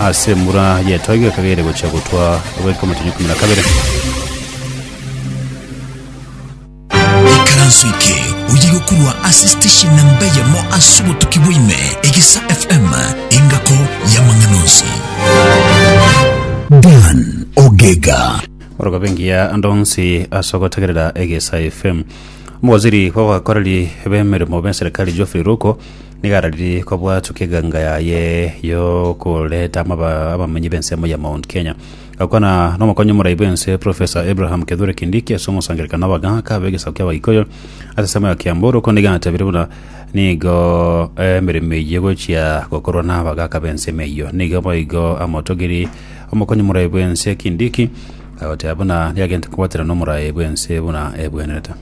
Ase embura y'etoigo ekagere gochia gotwa goika omotenyo ikomi na kabere. Ikaranso eke oye gokorwa ase station namba eyemo ase obotuki bwaime, Egesa FM, engako y'amang'ana onsi. Dan Ogega. Orogobe engiya ande onsi ase ogotegerera Egesa FM. Omowaziri bw'abakoreri b'emeremo b'eserikali Geoffrey Ruko Nigo arariri kobwatwa keganga yaye yokoreta amaba- abamonyi b'ensemo ya Mount Kenya. Gakwana nomokonyi omorai bw'ense Professor Abraham Kithure Kindiki ase omosangererekano w'abagaaka b'egesaku ki'Abagikuyu ase ensemo ya Kiambu Ruko nigo atebirie buna nigo emeremo eyio egochia gokorwa n'abagaaka b'ensemo eyio. Nigo boigo amotogiri omokonyi omorai bw'ense Kindiki agoteba buna nigo agente kobwatera nomorai bw'ense buna ebwenerete.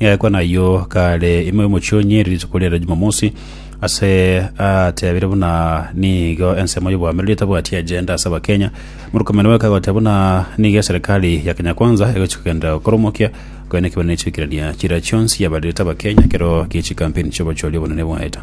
Nigaikwa nayio kare ime omochie o Nyeri rituko ria ere Jumamosi, ase atebire buna nigo ensemo y'obwamiroria etabwati agenda ase Abakenya. Murkomen oyo akagoteba buna nigo eserikali ya Kenya Kwanza egochia kogenda gokoromokia koenekio buna echiikirania chiria chionsi yabarerete Abakenya ekero gie chikampeni chi'obochori obonene bwaeta.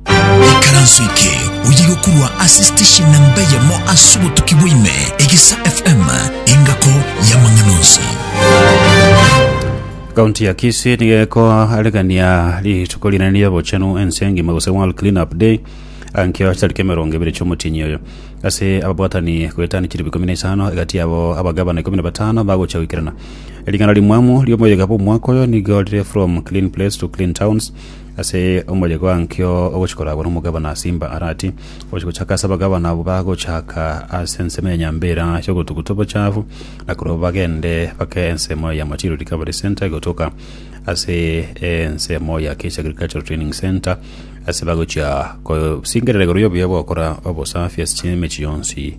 Ekaranso eke oye gokurwa ase station namba eyemo ase obotuki bwaime, Egesa FM, engako y'amang'ana onsi. Kaunti ya Kisii nigo ekoaregania rituko rinene ri'obochenu ense engima gose World Clean Up Day ankio chitariki emerongo ebere chi'omotienyi oyo. Ase ababwatani goetania chilifu ikomi na isano egati yabo abagavana ikomi na batano bagocha goikerana. Ring'ana rimwamu ri'omoyega bw'omwaka oyo nigo rire From Clean Place to Clean Towns Ase omoriogo ankio ogochi-koragwa nomogabana ase imba Arati, ogochi-gochaka ase abagabana abwo bagochaka ase ensemo ya nyambera y'ogotuguta obochafu, na korwa bagende bake ensemo ya Machiru Recovery Centre gotoka ase ensemo ya Kechi Agricultural Training Centre ase bagochia kosingerera igoro y'obuya bw'ogokora obosafi ase emechie yonsi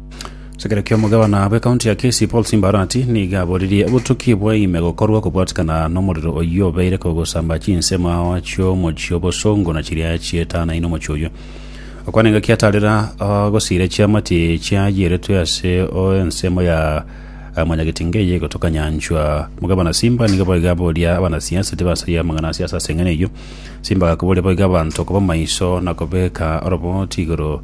Sekera ki'omogabana bw'ekaunti ya Kisii Paul Simba Arati nigo aboririe obotuki bwaime gokorwa kobwatikana nomorero oyio obeire kogosamba chinsemo ao chi'omochie obosongo na chiria chietanaine omochie oyio. Okwana engaki atarera agosiire chiamati chiayeretwe ase o ensemo ya eh, mwanyagetinga eye egotoka nyanchwa. Omogabana Simba nigo boigo aboria abanasiasa tibasaria amang'ana a siasa ase eng'ene eyio. Simba agakoboria boigo abanto koba maiso na kobeka oroboti igoro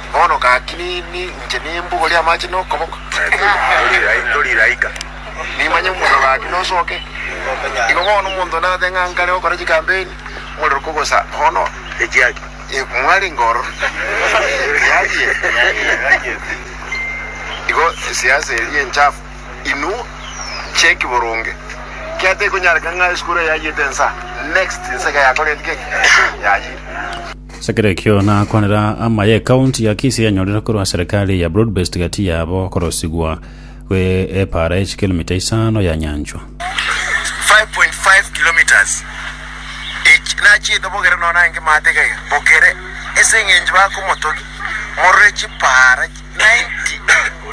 Bono gaki nini inche nimbugorie amache nokoboko? Toriraika. Nimanye omorero gaki nosoke. Igo bono omonto nabe ng'a nkare gokora chikampeni, omorero kogosa bono. Echiaki. Mwarenge ororo. Yarie. Igo esiasa eria enchafu. Inwe cheki boronge. Ekiagera tekonyarekana ng'a esukuru eye yayiete ensa. Next ensa iga yakoreti gaki? Yayire. As'ekero ekio nakwanera amaye ekaunti ya Kisii yanyorire korwa serikali ya broadbased gati yabo korosigwa gwe epara ye chikilomita isano ya nyanchwa. 5.5 kilometres each nachete bogere nonya naye ngemate igaiga bogere ase engencho bakomotogi morore chipara 90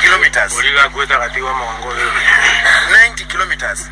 kilometres 90 kilometres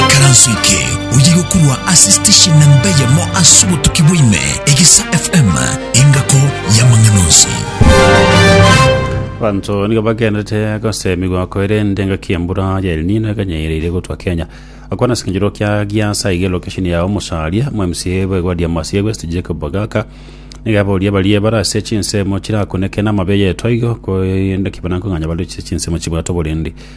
Ikaranso eke oye gokorwa ase station namba eyemo ase obotuki bwaime egesa FM engako y'amang'ana onsi. Abanto nigo bagenderete gosemigwa koerende engaki embura ya El Nino ekanyaereire gotwa Kenya. Akwana ase ekenyoro kia Giasa iga location ya omosaria mu MCA bw'egwadi ya Masia West Jacob Ogaka nigo aboria baria bare ase chinsemo chirakuneke namabe yetwa igo koerende ki banakong'anya bare ase chinsemo chibwate oborindi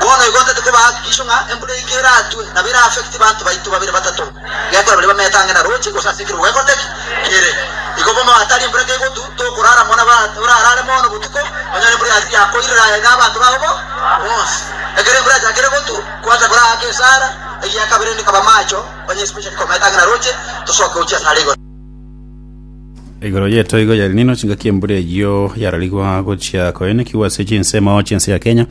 Bono igo ntotete bahakikisho ng'a embura eke eratue, nabo era affect banto baito babere batato, gekora baria bamete ang'e na roche, gose ase ekero gwekoteki kere. Igo bono hatari embura kegotu, tokorara mono, nabo orarare mono botuko, onyore embura yatiga yakoirera aye na abanto bao bo bonsi. Ekero embura yachakire gotu, kwancha kore aake esara, egiakabere rende kaba amacho, onye especially komete ang'e na roche, tosoke gochia asare igoro. Igoro yetoigo ya Elnino chingaki embura eyio yararigwa gochia koenekigwa ase chinsemo chiense ya Kenya.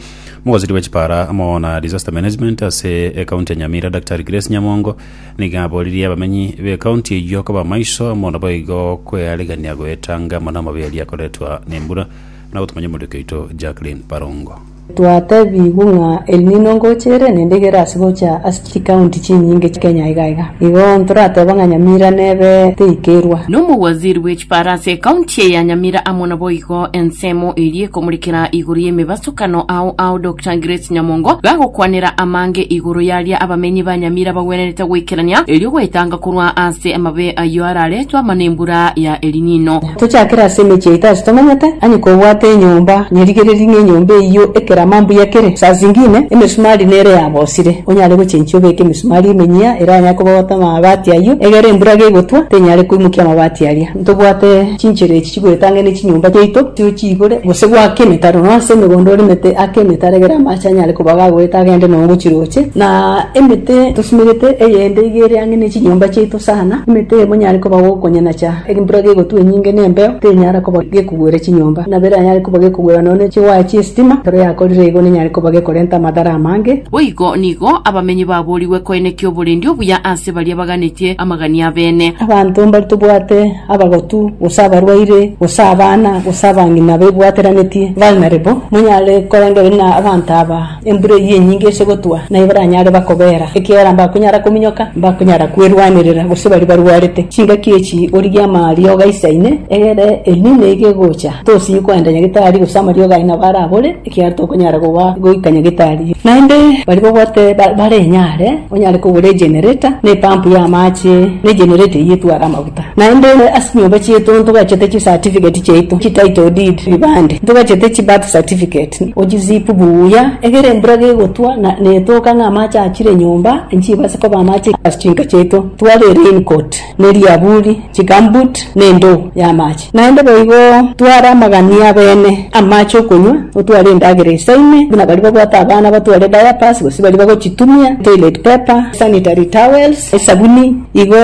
Mogosiri bwe chipara amo na disaster management ase ekaunti ya Nyamira Daktari Grace Nyamongo nigo aboririe abamenyi b'ekaunti eyio koba maiso amo naboigo kwearegania goetanga amo namaberia akoretwa nembura na gotumanya omorioki oito Jacqueline Barongo. Twatebigwe ng'a El Nino ngocha ere nendegera ase gocha ase chikaunti chinyinge Kenya iga iga. Igo ntorateba ng'a Nyamira nebe teikerwa. Nomowaziri bwe chiparo ase ekaunti eye ya Nyamira amo naboigo ensemo eria ekomorekera igoro y'emebasokano ao ao Doctor Grace Nyamongo gagokwanera amange igoro yaria abamenyi ba Nyamira bagwenerete goikerania erio goetanga korwa ase amabe ayio araretwe amana embura ya El Nino. Tochakere ase emechie yaito ase tomanyete, onye kobwate enyomba nyerigereri ng'a enyomba eyio ekerama mbuya kere, saa zingine emesumari nere yabosire, onyare gochenchia obeke emisumari emenyia eranyare kobogota amabati ayio, egere embura gegotwa tenyare koimokia amabati aria. Ntobwate chinchera echi chigoetang'ena echinyomba chiaito chio chiigure, gose goaka emetaro nonya ase emegondo oremete aka emetaro egere amache anyare koba gagoeta agende nonya gochia roche. Na emete tosumerete eyende iga eriang'e nechinyomba chiaito sana, emete eye monyare koba gokonyinacha. Embura gegotwa enyinge na embeo tenyara koba gekogwera chinyomba, na bera anyare koba gekogwera nonya chiwaya chi'esitima, ekero yakorire igo nenyare koba gekorenta amadara amange. Boigo nigo abamenyi baboorigwe koenekia oborendi obuya ase baria baganetie amagania abene. Abanto mbari tobwate abagotu, gose abarwaire, gose abana, gose abang'ina baibwateranetie vulnerable, monyare korengereria na abanto aba. Embura eyio enyinge ase gotwa naye baranyare bakobeera, ekiagera mbakonyara kominyoka, mbakonyara kwerwanerera, gose baria barwarete. Chingaki echi origie amariogo aisaine, egere Elnino eye gegocha, tosinyi koenda Nyagetari, gose amariogo aye nabo are abore, ekiagera tokonyara goba goika Nyagetari. Naende baria babwate bare enyare, onyare kogora egenereta, na epampu y'amache, na egenereta eyio etware amaguta. Naende ase chinyomba chiaito ntogachete chisatifigeti chiaito, chititle deed, ribande, ntogachete chibirth certificate, ochizipu buya, egere embura gegotwa na netoka ng'a amache achire nyomba, nchiba ase koba amache ase chinka chiaito, twabee raincoat, ne riaburi, chigumboot, ne endoo y'amache. Naende boigo tware amagani abene, amache okonywa, otware endagera esaine, buna baria babwate abana batware diapers, gose baria bagochitumia, toilet paper, sanitary towels, esabuni, Igo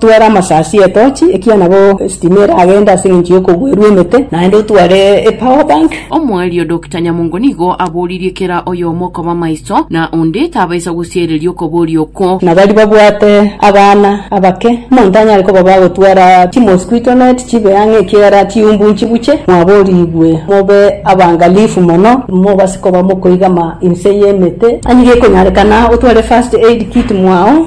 tware amasasi y'etochi, ekiagera nabo esitima eragende ase engencho y'okogwerwa emete, naende otware epower bank. Omwario Dokita Nyamongo nigo aboririe kera oyomo koba maiso, na onde tabaisa gosiereria okoboria okwo. Na baria babwate abana abake, omonto tanyare kobaba agotwara chimosquito net chibe ang'e ekiagera chiumbu nchibuche. Mwaborigwe mobe abangalifu mono, mobase koba mokoigama inse y'emete. Onye gekonyarekana otware first aid kit mwao.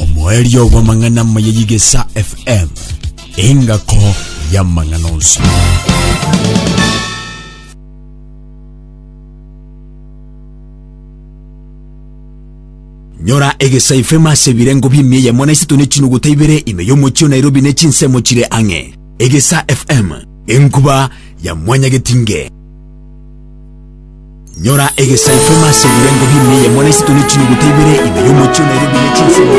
omoerio bw'amang'ana amaya y'igesa fm engako y'amang'ana onsi nyora egesa fm ase ebirengo bi'emia eyemo na isato ne chinuguta ibere ime y'omochie o nairobi ne chinsemo chire ang'e egesa fm enkuba ya mwanyagetinge Nyora egesaikwa ime ase ebirengo bi'ime eyemo na isiko ne chinyuguta ibere ime y'omochie onairwe bire chinsemo.